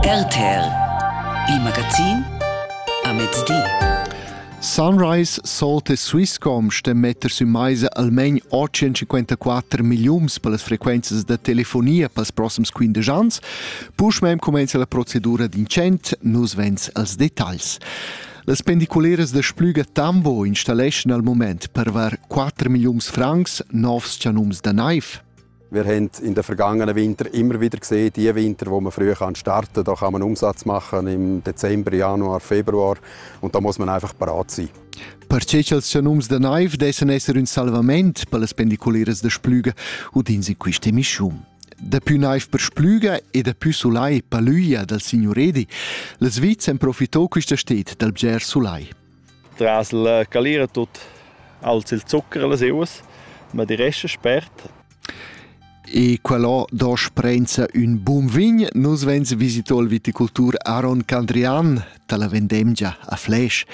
RTL, il magazin a mezdi. Sunrise, Salt e Swisscom ston metter sü maisa almain 854 milliums per las frequenzas da telefonia pels prossims 15 ans. Puschmem comenza la procedura d'incent, nus vens als detagls. Las pendiculeras da Splüga Tambo installeschan al moment per var 4 milliums francs novs chanums da naiv. Wir haben in den vergangenen Winter immer wieder gesehen, die Winter, wo man früh kann starten kann, da kann man Umsatz machen im Dezember, Januar, Februar und da muss man einfach parat sein. Perche cha'ls chanums da naiv dessan esser ün salvament per las pendiculeras da Splüga udins in quist emischium. Dapü naiv per Splüga e dapü sulai per l'üia dal signuredi, la Sviza en profitò quista sted dal bger sulai. Tras la calira tut alza il zucher a las euas, ma die resta spert. E quellò do sprenza ün bun vin. Nus vegns visito il viticultur Aaron Candrian dalla vendemgia a Fläsch.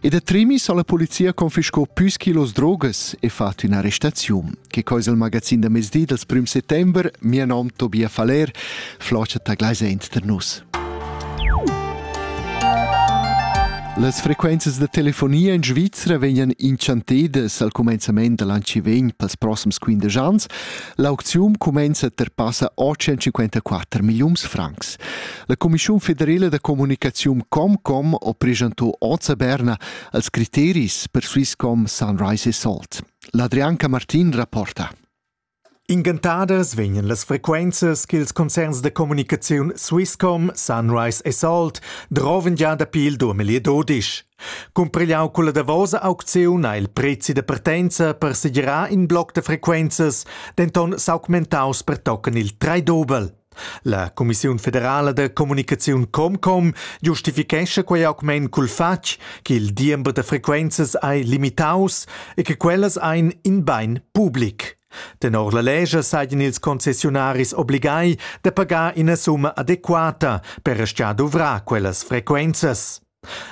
E da trimis ha la polizia confiscò püs kilos drogas e fatto un'arrestazione. Che cosa il magazin da mezdi dal prim settembre, mio nom Tobias Faller, Floscha taglaisa inter nus. Las frequenzas da telefonia in Svizra vegnan inchantedas al cumenzament da l'an che vegn pels prossims 15 ans. L'aukziun cumenza per passa 854 milliuns francs. La Commissiun federala da comunicaziun Comcom ha presentò oz a Berna als criteris per Swisscom Sunrise e Salt. L'Adrianca Martin rapporta. Ingantadas vegnan las frequenzas ch'ils concerns da communicaziun Swisscom, Sunrise e Salt drovan gia dapi il duamilli e dudisch. Cumprigliau culla davosa aucziun ha il prezi da partenza per segirar in bloc da frequenzas denton s'augmentaus pertochen il trai dubel. La cumissiun federala da communicaziun ComCom giustifichescha quei augment cul fatg ch'il diember da frequenzas ei limitaus e che quellas ein in bein public. Tenor la legge seien ils concessionaris obligai da pagar ina summa adequata per aschia duvrar quellas frequenzas.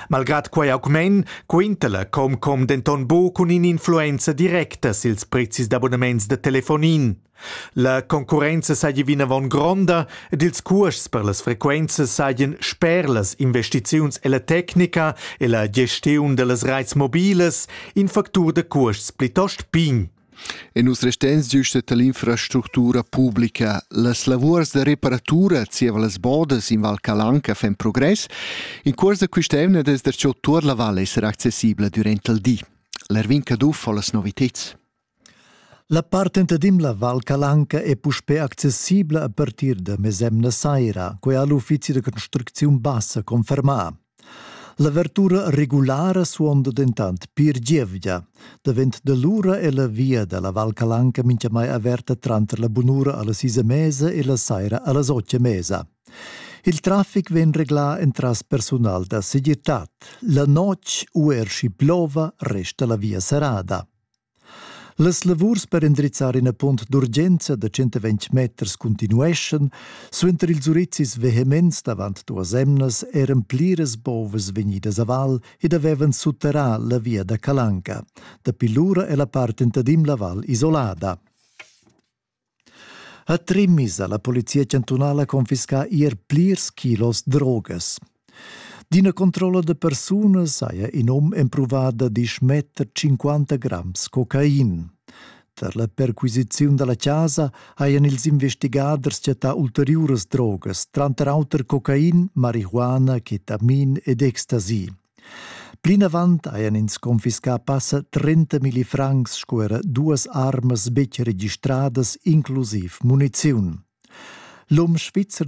Malgrad quei augment quinta la Comcom denton buc cun in'influenza directa sils prezis d'abonnaments da telefonin. La concurrenza seigi vinavon gronda ed ils cuosts per las frequenzas seigien sper las investiziuns ella tecnica e la gestiun dallas reits mobilas in factur da cuosts plitost pign. E nus resteins giusta tall'infrastructura publica. Las lavurs da reparatura zieva las bodas in Val Calanca fan progress. In cuors da quist'eivna es darcheu tuot la val esser accessibla durant il di. L'Ervin Caduff ho las noviteds. La partenta d'Imla Val Calanca è puspè accessibla a partir da mesemna saira, quai ha l'uffizi da construcziun bassa confermà. L'avertura regulara suonda dentant pir gievgia. Davent da lura è la via da la Val Calanca mintgamai averta tranter la bunura a las sis e mesa e la saira a las otg e mesa. Il traffic vegn reglà entras persunal da segirtad. La notg u er schi plova resta la via serrada. Las lavurs per endrizzar ina punt d'urgenza da 120 meters continueschan, suenter ils urizis vehements davant duas emnas eran pliras bovas vegnidas a val ed avevan sutterrà la via da Calanca. Dapi lura è la part entadim la val isolada. A Trimmis ha la polizia chantunala confiscà ier plirs kilos drogas. D'ina controlla da persunas haja in um empruvà da dismetter 50 grams cocain. Tar la perquisiziun da la chasa hajan ils investigaders chattà ulteriuras drogas, tranter auter cocain, marihuana, ketamin ed ecstasy. Plinavant hajan ins confiscà passa trentamilli francs sco era duas armas betg registradas, inclusiv muniziun. L'um svizzer